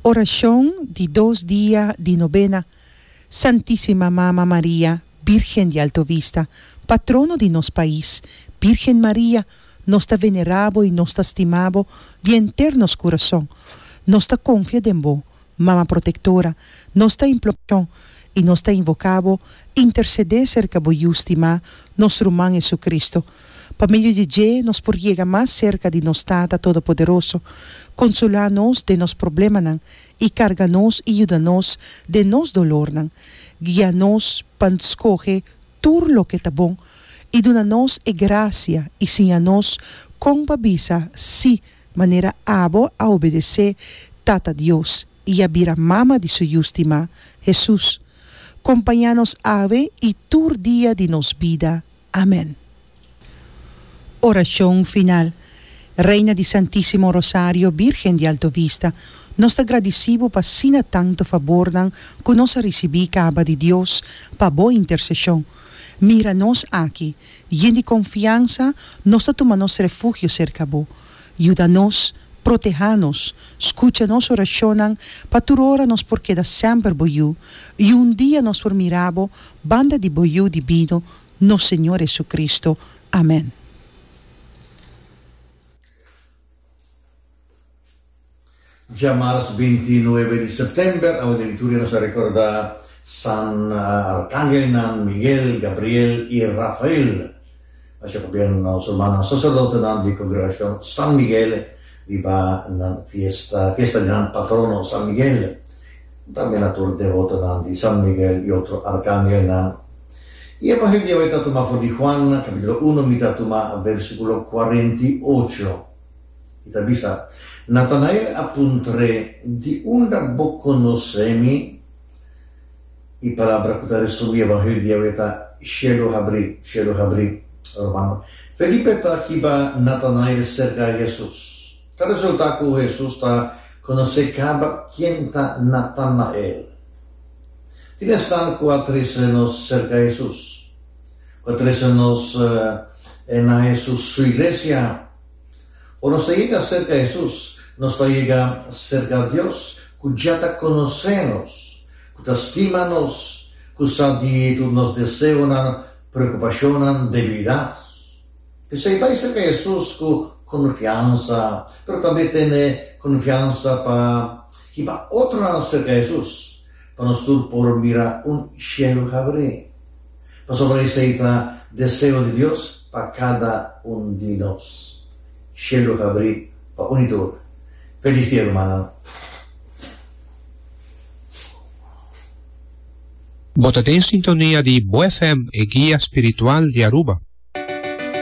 Orashon di dos dia di nobena, Santisima Mama Maria, Birgen di Alto Vista, Patrono di nos pais, Birgen Maria, nos ta venera bo y nos ta stima bo di enter nos curason. Nos ta confia den bo, Mama Protectora, nos ta implor'On y nos ta invoca Bo, intercede cerca Bo Yu stimá, nos Ruman Jesucristo. Pa medio di Dje nos por yega mas cerca di nos Tata Todopoderoso. Consola nos den nos problemanan y carga nos y yuda nos den nos dolornan. Guia nos pa scoge tur loke ta bon y duna nos e gracia y siña nos con pa bisa sí Manera abo a obedesé Tata Dios i a bira mama di su Yu stimá, Hesus, kompañá nos awe i tur dia di nos bida. Amèn. Orashon final. Reina di Santísimo Rosario, Bírgen di Alto Vista, nos ta gradisí Bo pa asina tantu fabornan ku nos a risibí kaba di Dios pa Bo interseshon. Mira nos aki, yen di konfiansa, nos ta tuma nos refugio serka bo. Yuda nos, protehá nos, skucha nos orashonnan, pa tur ora nos por keda sèmper bo yu, i un dia nos por mira bo banda di bo Yu di bino, nos Señor Hesukristu. Amèn. Djamars binti i nuebe di september, awe den lituria nos a rekorda San Arkangelnan Miguel, Gabriel i Rafael. Asina ku bier nos rumannan saserdotenan di kongregashon San Miguel riba nan fiesta, fiesta di nan patrono San Miguel. Tambe na tur devotonan di San Miguel i otro arkangelnan. I e mangel di Yahweh ta tumá for di Juan, kapítulo uno, mi ta tumá bèrsikulo kuarenta i ocho, i ta bisa, Natanael a puntr'é, Di unda bo konos'é mi? I palabra ku ta resumí e mangel di Yahweh ta, Shelu habrí, shelu habrí. Ruman, Felipe ta hiba Natanael serka Hesus. Ta resultá ku Hesus ta konos'é kaba ken ta Natanael. Tin esnan ku a trese nos serka Hesus, ku a trese nos na Hesus su iglesia. Ora nos ta yega serka Hesus, nos ta yega serka Dios ku dja ta konosé nos, ku ta stima nos, ku sa di tur nos deseonan, preokupashonnan, debilidat. P'esei bai serka Hesus ku konfiansa, pero tambe tene konfiansa pa hiba otronan serka Hesus, pa nos tur por mira un shelu habr'é, pasobra esei ta deseo di Dios pa kada un di nos. Shelu habrí pa uni tur. Felis dia, rumannan! Bo ta den sintonia di Bo FM, e guia spiritual di Aruba.